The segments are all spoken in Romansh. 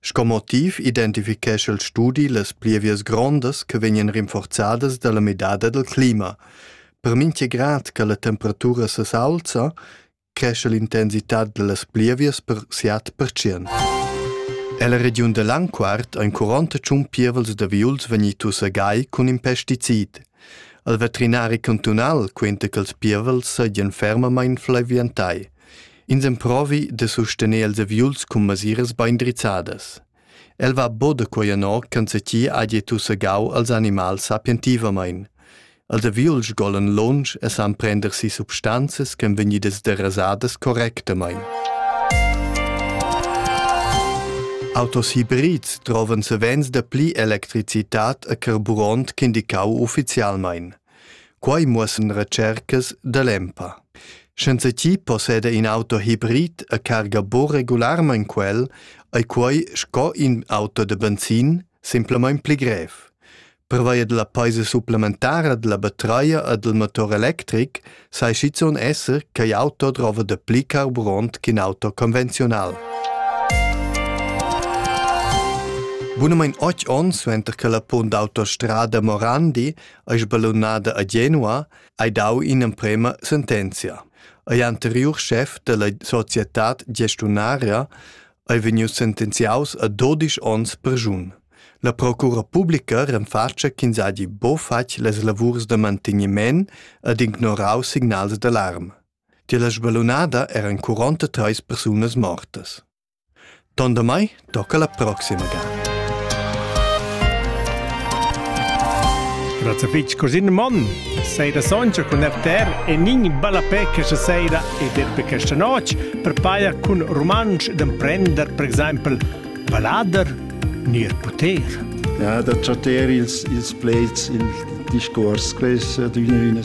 Sco motiv identifichescha il studi las plievias grondas che vegnan rinforzadas dalla midada dal clima. Per mincha grad che la temperatura s'aulza, cresce l'intensità dallas plievias per siat percent. Ella regiun da Langquart ein 40 tschun pievels da viuls vegnitus a gai cun in pesticid. Il veterinari cantunal quenta che ils pievels seigien fermamain flaviantai. Ins emprovi da sustener els aviuls cun masiras bein drizzadas. El va bod quei anor ch'enzatgi hagi tussegau als animals sapientivamein. Els aviuls sgolan lunsch e san prender si substanzas ch'en vegnidas derasadas correctamein. Autos hybrids trovan savens da pli electricitat e carburant ch'indicau ufficialmein. Quai muossan retschercas da l'EMPA. Senza chi posseda in auto hibrid a carga bo regularmaing quel, ei quai sco in auto da benzin simplamain pli grev. Pervia della paisa supplementara della batreia e del motor electric sai schizun esser che auto drova da pli carburant ch'in auto convenziunal. Bunamain 8 onns suenter che la punt d'autostrada Morandi ei sballunada a Genua, hai dau in'emprema sentenzia. Ei anteriur chef della societad gestiunaria ei vegnius sentenziaus a 12 onns perschun. La procura publica renfatscha ch'ins hagi bo fatg les lavurs da manteniment ed ignorau signals d'alarm. Tier la sballunada eran 43 persunas mortas. Tondamai tocca la proxima ga. Grazie fitch Corsin Mon, seida soncha cun FTR e nin ballapè questa seida e derpe questa noc per paia cun romansch d'emprender per exempel ballader nier poter. Ja, da chatter ils, ils pleds, il discors, quest d'üna üna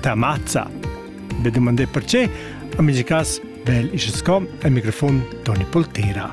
ta mazza. Be dumandé perché, a mes cas, vel ische sco al microfon Toni Poltera.